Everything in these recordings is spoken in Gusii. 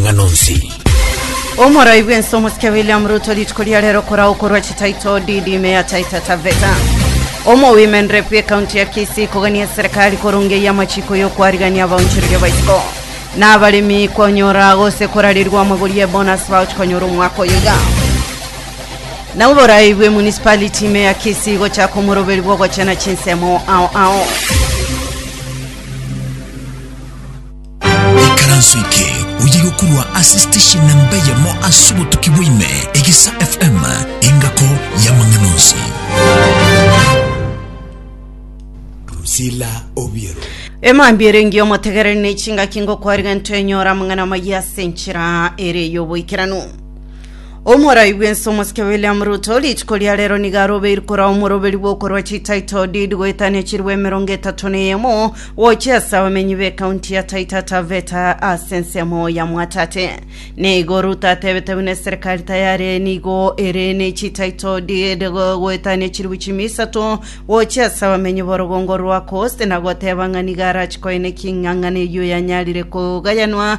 amang'ana onsi. Omorai bw'ense omosike William Ruto rituko ria rero korao korwa chitaito DD Mayor Taita Taveta. Omowimeni Rep ekaunti ya Kisii kogania eserekari korunga eyi amachiko y'okwarigania abaonchoreria baisiko na abaremi konyora gose korarirwa amagori ye bonus vouch konyora omwaka oyo iga. Na oborai bwe municipality ime ya Kisii gochaka omoroberi bw'ogochena chinsemo ao ao. Ekaranso eke oye gokorwa ase station namba eyemo ase obotuki bwa ime, Egesa FM, engako y'amang'ana onsi. Drusilla Obiero. Emambia ere engiya omotegereri ne chingaki ngokwarigento enyora amang'ana amayia ase enchera ere y'oboikeranu. Omorai bw'ense omosike William Ruto rituko ria rero nigo arobeirwe korwa omoroberi bw'okorwa chititle deed goetania chirwa emerongo etato na eyemo gochia ase abamenyi b'ekaunti ya Taita Taveta ase ensemo ya Mwatate. Nigo Ruto atebete buna eserikari tayari nigo ere ne chititle deed go- goetania chirwa chimi isato gochia ase abamenyi b'orogongo rwa Coast na goteba ng'a nigo arachikoe ne king'ang'ana eyio yanyarire kogayanwa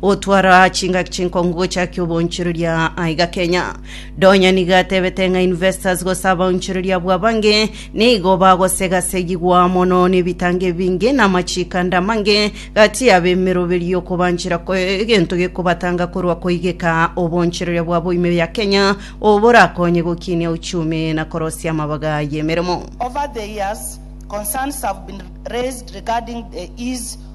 Gotwara chingaki chinkong'u gocha ki oboonchoreria aiga Kenya. Donya nigo atebete ng'a investors gose abaonchoreria bw'abange nigo bagosegasegigwa mono nebitango ebinge na amachikanda amange gati y'abemeroberio y'okobanchera ko egento gekobatanga korwa koigeka oboonchoreria bwabo ime ya Kenya oborakonye gokinia uchumi na korosia amabaga y'emeremo. Over the years, concerns have been raised regarding the ease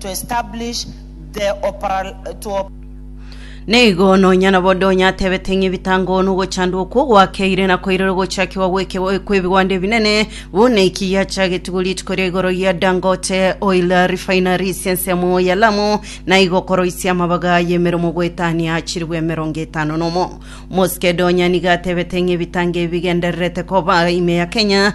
to establish the operational. Nigo nonya nabo Donya atebete ng'a ebitango nogochandwa okwo gwakeire na koirera ogochakigwa gw'ekebo- kw'ebigwanda ebinene, buna eki giachagetigwe rituko ria igoro gia Dangote Oil Refineries ensemo ya Lamu, na igo koroisia amabaga y'emeremo goetania chilifu emerongo etano nomo. Mosike Donya nigo atebete ng'a ebitango ebi bigendererete koba ime ya Kenya,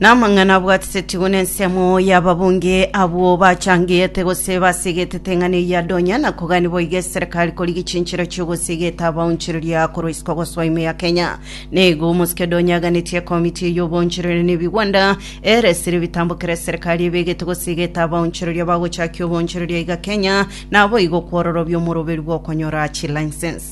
Namang'ana abwatetetigwe nensemo y'ababunge abwo bachangete gose basigetete ng'a neyia donya na kogania boigo eserekari koria gichinchero chi'ogosiegeta abaonchoreria korwa isiko gosoa ime ya Kenya. Neigo omosike donya aganetie ekomiti eye y'oboonchoreri na ebigwanda eresire ebitambo kera eserekari ebegete gosiegeta abaonchoreria bagochakia oboonchoreria iga Kenya naboigo kwororobia omoroberu bw'okonyora chilicense.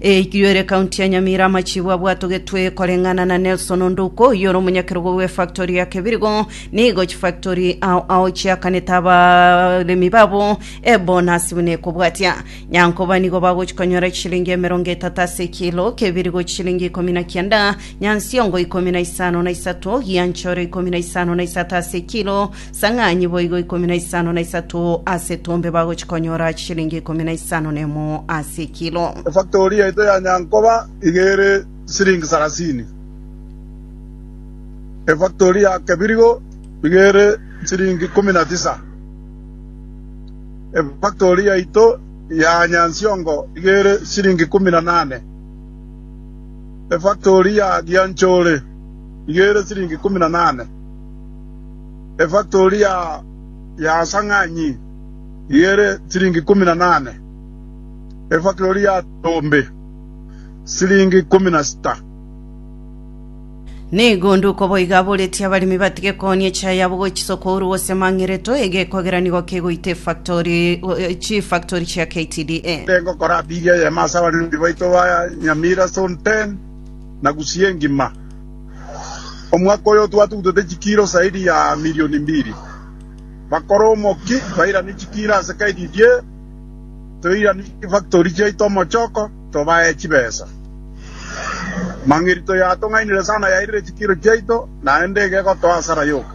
Eyiyo ere county ya Nyamira amachibu abwatogetwe koreng'ana na Nelson Onduko oyio ore omonyakerogo bwe factory ya Kebirigo nigo chifactory ao ao chiakanete abaremi babo ebonasi buna ekobwatia Nyankoba nigo bagochikonyora chishilingi emerongo etato ase ekilo Kebirigo chishilingi ikomi na kianda Nyansiongo ikomi na isano na isato Gianchore ikomi na isano na isato ase ekilo Sang'anyi boigo ikomi na isano na isato ase etombe bagochia konyora chishilingi ikomi na isano na emo ase ekilo. Efaktori yaito ya Nyankoba iga ere chisiringi sarasini. Efaktori ya Kebirigo iga ere chisiringi ikomi na tisa. Efaktori yaito ya Nyansiongo iga ere chisiringi ikomi na nane. Efaktori ya Gianchore iga ere chisiringi ikomi na nane. Efaktori ya Yasang'anyi ere siringi ikomi na nane, efaktori ya Tombe siringi ikomi na sita. Nigo onde uko boiga aboretie abaremi batige koonia echae yabo gochia isoko oru gose mang'ereto ege ekogera nigo kegoita efaktori chifaktori chia KTDA. Nere ngokora apili eyemo ase abaremi baito ba Nyamira Zone 10 na Gusii engima. Omwaka oyo twatugutete chikiro zaidi ya milioni mbili. Bakore omoki bairanie chikiro ase kaididie, toiranie chifactori chiaito omochoko, tobae chibesa. Mang'irito y'atong'ainire sana yairire chikiro chiaito, naende iga egotoa asara yoka.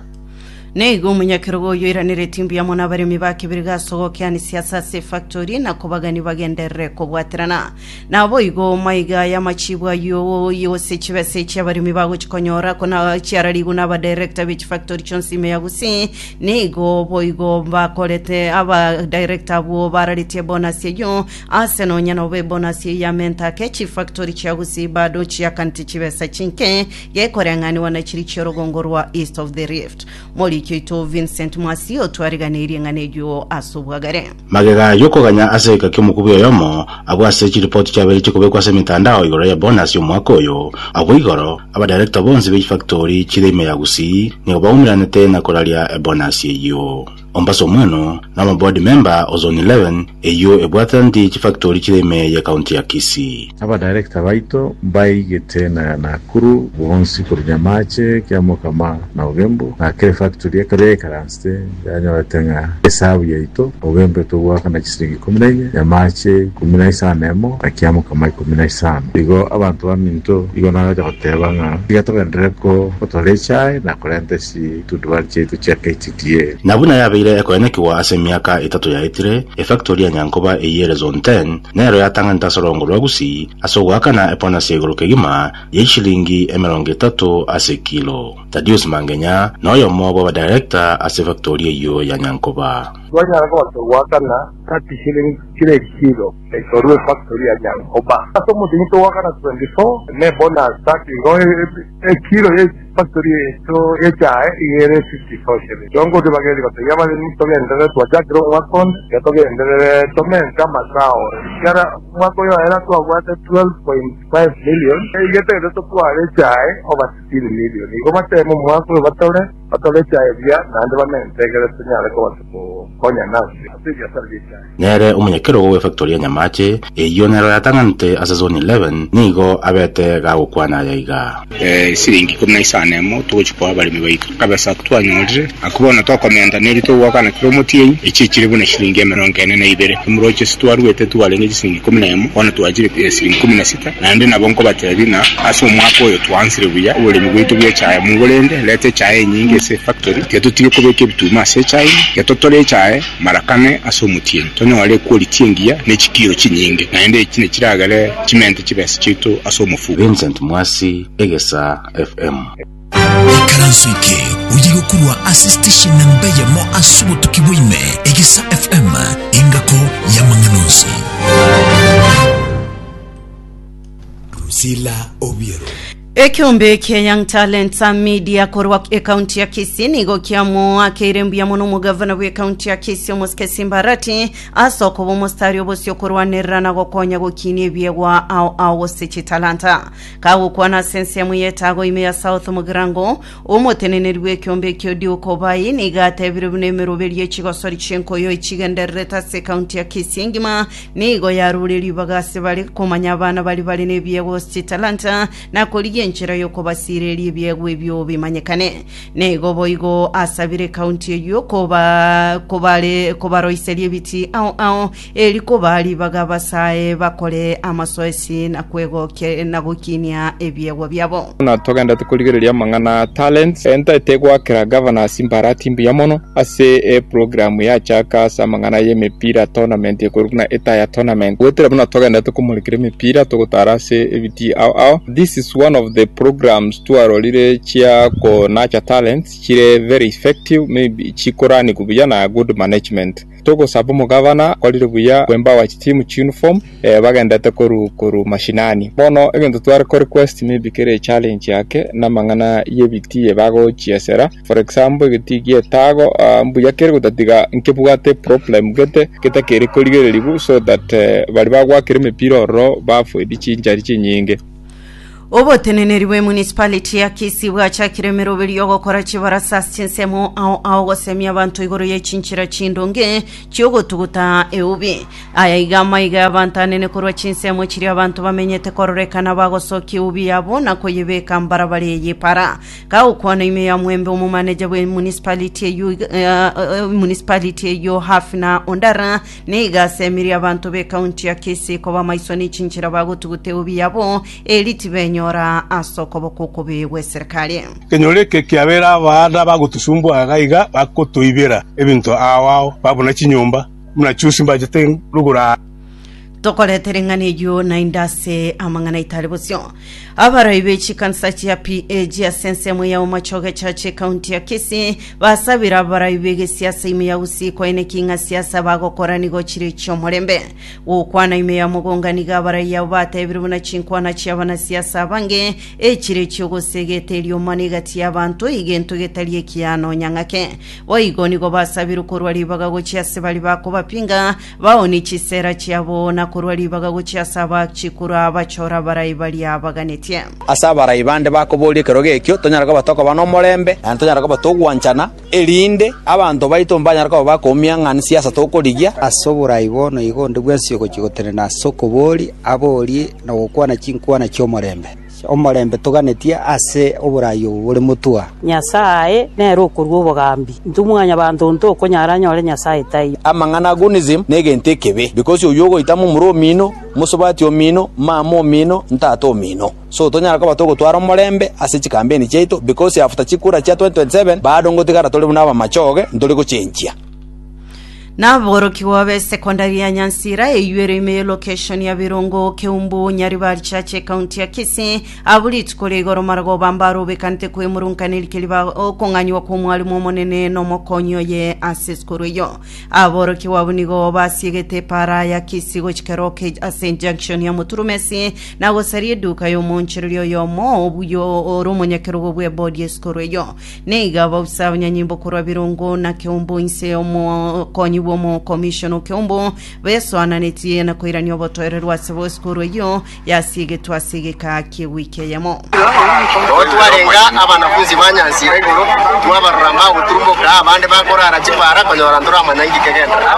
Neigo omonyakerogo oyoiraneretie mbuya mono abaremi ba kebirige ase ogokeanisia ase ase efactori na kobagani bagenderere kobwaterana. Naboigo maiga aya amachibwa ayio gose chibesa echi abaremi bagochi konyora kona chiararigwe na abadirector be chifactori chionsi ime ya Gusii. Neigo boigo bakorete abadirector abwo bararetie bonasi eyio ase nonya nobe bonasi eyio ya menta ake chifactori chia Gusii bado chiakaneti chibesa chinke Gekoreng'anigwa na chiri chi'orogongo rwa East of the Rift. Moriki oito Vincent Mwasi otwariganeirie ng'a neguo ase obwagare. Magega ayio koganya ase egeka ki'omokubi oyomo abwo ase chiripoti chiabeire chikobekwa ase emetandao igoro ya bonus y'omwaka oyo. Agwo igoro, aba director bonsi be chifakitori chire ime ya Gusii nigo baumeranete na koraria ebonus eyio. Mombasa Omweno, na omoboard member o Zone 11 eyio ebwataneti chifactori chire ime ye county ya Kisii. Abadirector baito mbaigete na Nakuru bonsi korwa Nyamache, Kiamokama na Ugembo, na kera efactori ekaba yaikaransete yanyorete ng'a esabu yaito, Ugembo etogoaka na chisiringi ikomi na inye, Nyamache ikomi na isano emo, na Kiamokama ikomi na isano. Igo abanto baminto igo nagocha goteba ng'a tiga togenderere ko gotwara echae na korenta chitundubari chiaito chia HDA. Na buna yabeire ekoenyekigwa ase emiaka etato yaetire, efactori ya Nyankoba eyere Zone Ten nero yatang'anete ase orogongo rwa Gusii ase ogoakana epona siaigoro kegima ya ishilingi emerongo etato ase kilo. Thadius Mangenya noyomo bw'abadirekta ase efactori eyio ya Nyankoba. Twanyara gocha goakana thirty shillings kiro ekilo korwa efactori ya Nyankoba. Ase omochie intwe goakana twenty four na ebonus thirty igo. Ekiro ye chifaktori yaito ye chae iga ere efiti toshere. Chiongo tibagetie gotebia abaremi, Togenderere twachakire omwaka onde, tiga togenderere tomente amasao. Ekero omwaka oyo ere twabwate 12.5 million, iga togende totware echae over 16 million. Igo bateme omwaka oyo batore, batore echae buya, naende bamente egere tonyare kobaisa kokonya nase ase ebiasara bi'echae. Nere omonyakerogo bw'efactory ya Nyamache, eyio nero yatang'anete ase Zone 11, nigo abete gagokwana aya iga. Esiringi ikomi na isano emo togochia koa abaremi baito. Akabesa ako twanyorire ako bono tokomenta nebi togoakana kera omotienyi, echio chire buna eshiringi emerongo ene na ibere. Emorocho ase twaruete twarenge chisiringi ikomi na emo, bono twachire esiringi ikomi na sita. Naende nabo nkobatebi ng'a ase omwaka oyo twansire buya oboremi bwaito bw'echae mogo rende reta echae enyinge ase efactory, tiga totige kobeka ebituuma ase echae ime, tiga totore echae, Marakane ase omotienyi tonyore equality engiya ne chikiiro chinyinge, naende echi nechiragere chimente chibesa chiaito ase omofuko. Vincent Mwasi, Egesaa FM. Ekaranso eke oye gokorwa ase station namba eyemo ase obotuki bwa ime, Egesaa FM, engako y'amang'ana onsi. Drusilla Obiero. Ekeombe kia Young Talents Media korwa ekaunti ya Kisii nigo kiamoakeire mbuya mono omogavana bw'ekaunti ya Kisii omosike Simba Arati ase okoba omostari obosio korwanerera na gokonya gokinia ebiegwa ao ao gose chitalanta. Kagokwana ase ensemo y'etago ime ya South Mugirango, omoteneneri bw'ekeombe ekio Duke Obai nigo atebire buna emeroberio y'echigosori chi'enkoyo echigendererete ase ekaunti ya Kisii engima Nigo yarure ribaga ase bare komanya abana baria bare nebiegwa gose chitalanta, na korigia enchera y'okobasiireria ebiegwa ebio bimanyekane. Nigo boigo asabire ekaunti eyio koba kobare kobaroiseria ebiti ao ao, eri koba ribaga abasae bakore amasoesi na kwegokia na gokinia ebiegwa biabo. Buna togenderete korigereria amang'ana a talents, entari tegoakera Governors imbarati mbuya mono ase eprogramu yachaka ase amang'ana y'emepira tournament ekorwa buna Etaya Tournament. Goetera buna togenderete komorekera emepira togotara ase ebitii ao ao. This is one of the programs twarorire chia ko nurture talents chire very effective, maybe chikoranigwa buya na good management. Togosaba omogavana akorire buya kwembawa chitimu chiuniform bagendete koru koru mashinani. Bono egento tware ko request maybe kere echallenge ake namang'ana y'ebiti ebagochiesera for example egetii gi'etago mbuya kere gotatiga nkebwate problem gete getakeri korigereriwu so that baria bagwakire emepira ororo bafoidi chinchari chinyinge. Oboteneneri bwe municipality ya Kisii bwachakire emeroberio y'ogokora chibarasa ase chinsemo ao ao gosemia abanto igoro ye chinchera chindonge chi'ogotuguta eubi. Aya iga amaiga y'abanto anene korwa chinsemo chiria abanto bamenyete kororekana bagosokia eubi yabo na koyebeka mbarabara eye epara. Kagokwana ime ya Mwembe omomaneja bwe municipality eyio iga- eh, eh, municipality eyio Hafina Ondara Nigo asemirie abanto b'ekaunti ya Kisii koba amaiso n'echinchera bagotuguta eubi yabo, erio tibenyora ase okoboko okobe gw'eserikari. Ekenyoro eke kiabeire abaada bagotosumbua iga iga bagotoibera ebinto ao ao ba buna chinyomba buna chiusi mbachete rugura aa. Tokorete ring'ana eyio naende ase amang'ana aitare bosio. Abarai be chikansa chia PAG ase ensemo ya Omochoge Church ekaunti ya Kisii basabire abarai b'egesiasa ime ya Gusii koina eking'a siasa bagokora nigo chire chi'omorembe. Gokwana ime ya Mogonga nigo abarai abo batebire buna chinkwana chia abanasiasa abange echire chi'ogosega eteriomana egati y'abanto egento getari ekiya nonya ng'ake. Boigo nigo basabirwe korwa ribaga gochia ase baria bakobapinga Baoonie chisera chiabo, na korwa ribaga gochia ase abaachi korwa abachore abarai baria abaganetie. Ase abarai bande bakoboria ekerogo ekio, tonyare koba tokoba nomorembe, naende tonyare koba togwanchana, erinde abanto baito mbanyare koba bakoumia ng'a nsiasa tokorigia. Ase oborai bono igo onde bwensi ogochia gotenena ase okobooria, aboorie na gokwana chinkwana chi'omorembe. Omorembe toganetie ase oboraai obo bore motwe. Nyasae nere okorua obogambi, intwe mwanyabanto onto okonyara anyore Nyasae taiyo. Amang'ana a Gunizimu negento ekebe, because oyio ogoita momura omino, mosubati omino, mama omino, ntata omino. So tonyara koba togotwara omorembe ase chikambeni chiaito because after chikura chia 2027 bado ngotigara tore buna abamachoge ntori gochenchia. Naborokigwa be secondary ya Nyansira eyuere ime ye location ya Birongo, Keumbu, Nyaribari Church ekaunti ya Kisii abwo rituko ria igoro maragoba bambare obekanete kwemurunkaneri rikiria ba okong'anywa kw'omwalimu omonene na omokonyi oye ase esukuru eyo. Aborokigwa abwo nigo basiegete epara ya Kisii gochika Roke ase junction ya Moturumesi na gosaria eduka y'omoonchereri oyomo obuya ore omonyakerogo bw'ebodi y'esukuru eyo. Nigo bosa abanyanyimbo korwa Birongo na Keumbu inse y'omokonyi bw'omokomishona o Keumbu besoananetie na koirania obotoereru ase bosikuru eyio yasiegetwe ase egeka ki'ewiki eyemo. Nabo twarenga abanafunsi banyansire igoro, twabarora mbagoturumboka, abande bakorara chipaara, konyora ntoramanya inki kegenderera.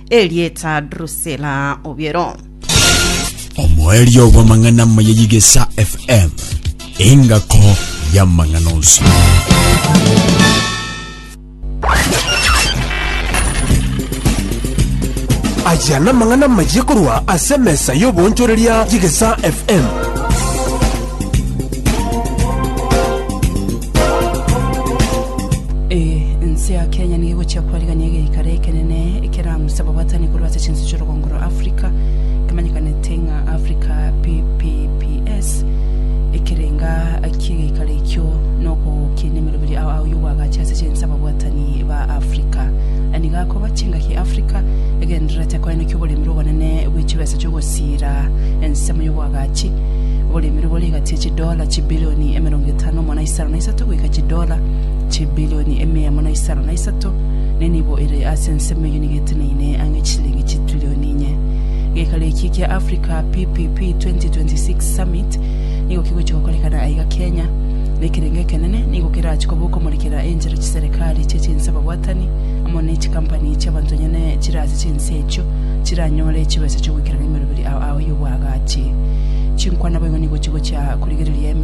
Erieta Drusila Obiero. Omoerio bw'amang'ana amaya y'Igesa FM, engako y'amang'ana onsi. Aya namang'ana amaya korwa ase emesa y'oboonchoreria y'Igesa FM. Ee, ense ya Kenya nigo egochia kwarigania egeikaro ekenene ekerang'usa ababwatani korwa ase chinse chi'orogongo rwa Africa, ekemanyekanete ng'a Africa PPPS, ekerenga ki egeikaro ekio na okogokinia emeroberi ao ao y'obwagachi ase chinse ababwatani ba Africa. Aya nigo akoba chingaki Africa egendererete koenekia oboremerwa obonene bwe chibesa chi'ogosiira ensemo y'obwagachi, oboremerwa bore egati ye chinse chidola chibilioni emerongo etano mo na isano na isato goika chidola chibilioni emia emo na isano na isato, ne nibo ere ase ensemo eyio nigo eteneine ang'e chisilingi chitrilioni inye. Geikaro eki kia Africa PPP 2026 Summit nigo kigochia gokorekana aiga Kenya, na ekerengo ekenene nigo kerachie koba okomorekera enchera chiserekari chie chinse ababwatani amo ne chikampani chi'abanto onye ne chire ase chinse echio chiranyore chibesa chiogoikerania emeroberi ao. ao y'obwagachi. Chinkwana boigo nigo chigochia korigereria emerogo.